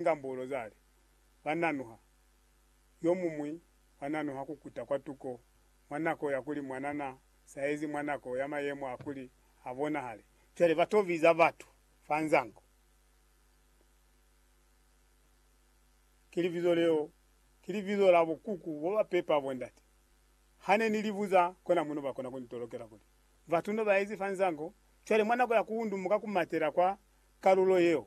Ngambulo zali, Ba nanuha. Yomuñwi wa nanuha ku kuta kwa tuko mwa nako ya kuli mwana na saezi mwa nako ya mayemo a kuli a bonahale. Cwale ba to biza batu fa nzango. Ki libizo leo, ki libizo la bukuku bo ba pepa bondate. Ha ne ni li buza, kona mo no ba kona ku ni tolokela kuli, Batu no ba ezi fa nzango. Cwale mwa nako ya ku undumuka ku matela kwa kalulo yeo,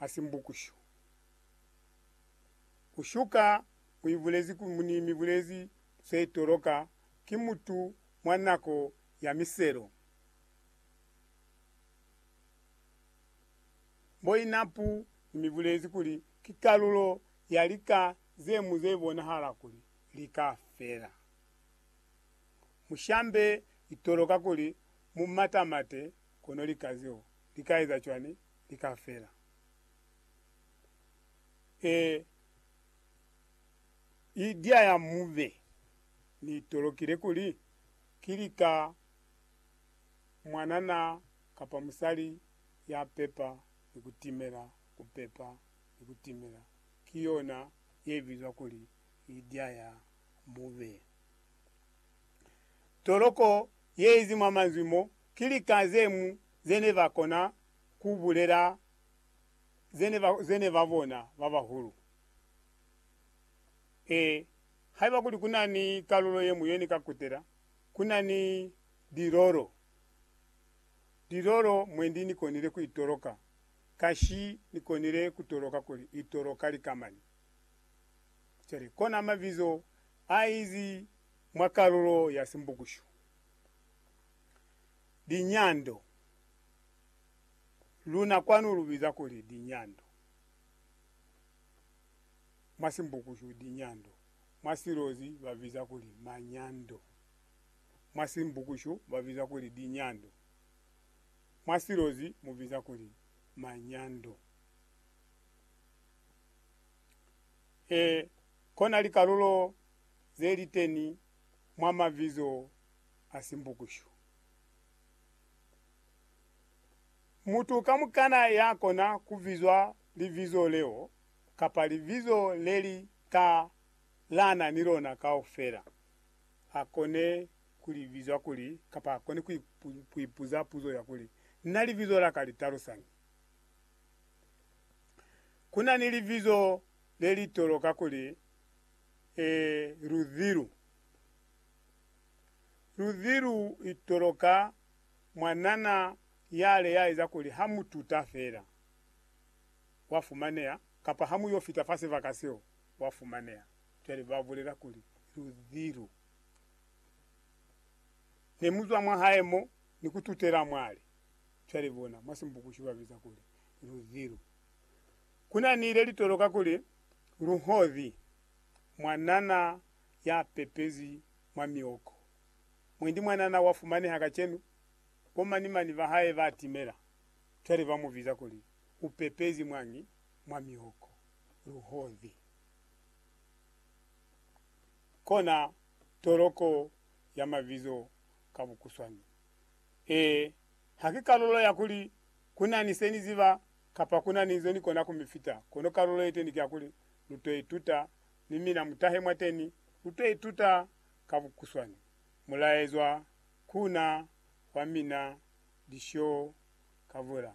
a simbukushu. Ku shuka mu ibulezi ku ni mibulezi ze toloka ki mutu mwa nako ya miselo. Mboinapu ni mibulezi kuli ki kalulo ya lika ze mu ze bonahala kuli lika fela. Mushambe itoloka kuli mu matamate kono lika zeo lika eza cwani? li ka fela. Ee, i diaya mu be. Ni tolokile kuli, ki lika mwanana kapa musali ya pepa ni ku timela, ku pepa ni ku timela, ki yona ye bizwa kuli i diaya mu be. Toloko ye izi mwa manzwi mo, ki lika ze mu ze ne ba kona ku bulela ze ne ba, ze ne ba bona ba bahulu. Ee, haiba kuli ku na ni kalulo ye mu ye ni ka kutela, ku na ni lilolo, lilolo mwendi ni konile ku itoloka. Kashi ni konile ku toloka kuli itoloka likamani. Cwale, kona mabizo a izi mwa kalulo ya Simbukushu. Linyando. Luna kwanu lu biza kuli linyando. Mwa Simbukushu, linyando. Mwa Silozi ba biza kuli manyando. Mwa Simbukushu ba biza kuli linyando. Mwa Silozi mu biza kuli manyando. E, kona likalulo ze liteni mwa mabizo a si mbukushu. Mutu kamukana ya kona ku bizwa libizo leo kapa libizo le li ka lana ni lona kaufela, a kone ku li bizwa kuli, kapa a kone ku ipuza puzo ya kuli, Na libizo la ka li talusañi? Ku na ni libizo le li toloka kuli, Ee, Luzhi lu. Luzi lu itoloka mwa nana yale ya eza kuli ha mu tuta fela, wa fumaneha, kapa ha mu yo fita fa sibaka seo, wa fumaneha. Cwale ba bulela kuli, Luzi lu. Ne mu zwa mwa hae mo, ni ku tutela mwali. Cwale bona, mwa Simbukushi ba biza kuli, Luzi lu. Ku na ni le li toloka kuli, Luhozi, mwa nana ya pepezwi mwa mioko. Mwendi mwanana wa fumaneha kacenu, bo mani-mani ba hae ba timela, cwale ba mu biza kuli u pepezi mwañi mwa mioko? Luhozi. Kona toloko ya mabizo ka bukuswani. Ee, ha ki kalulo ya kuli ku na ni se ni ziba kapa ku na ni nzo ni kona ku mi fita, kono kalulo ye teni ki ya kuli lu to ituta ni mina mutahe mwateni luto ituta ka bukuswani mulaezwa kuna wa mina Lisyo Kavula.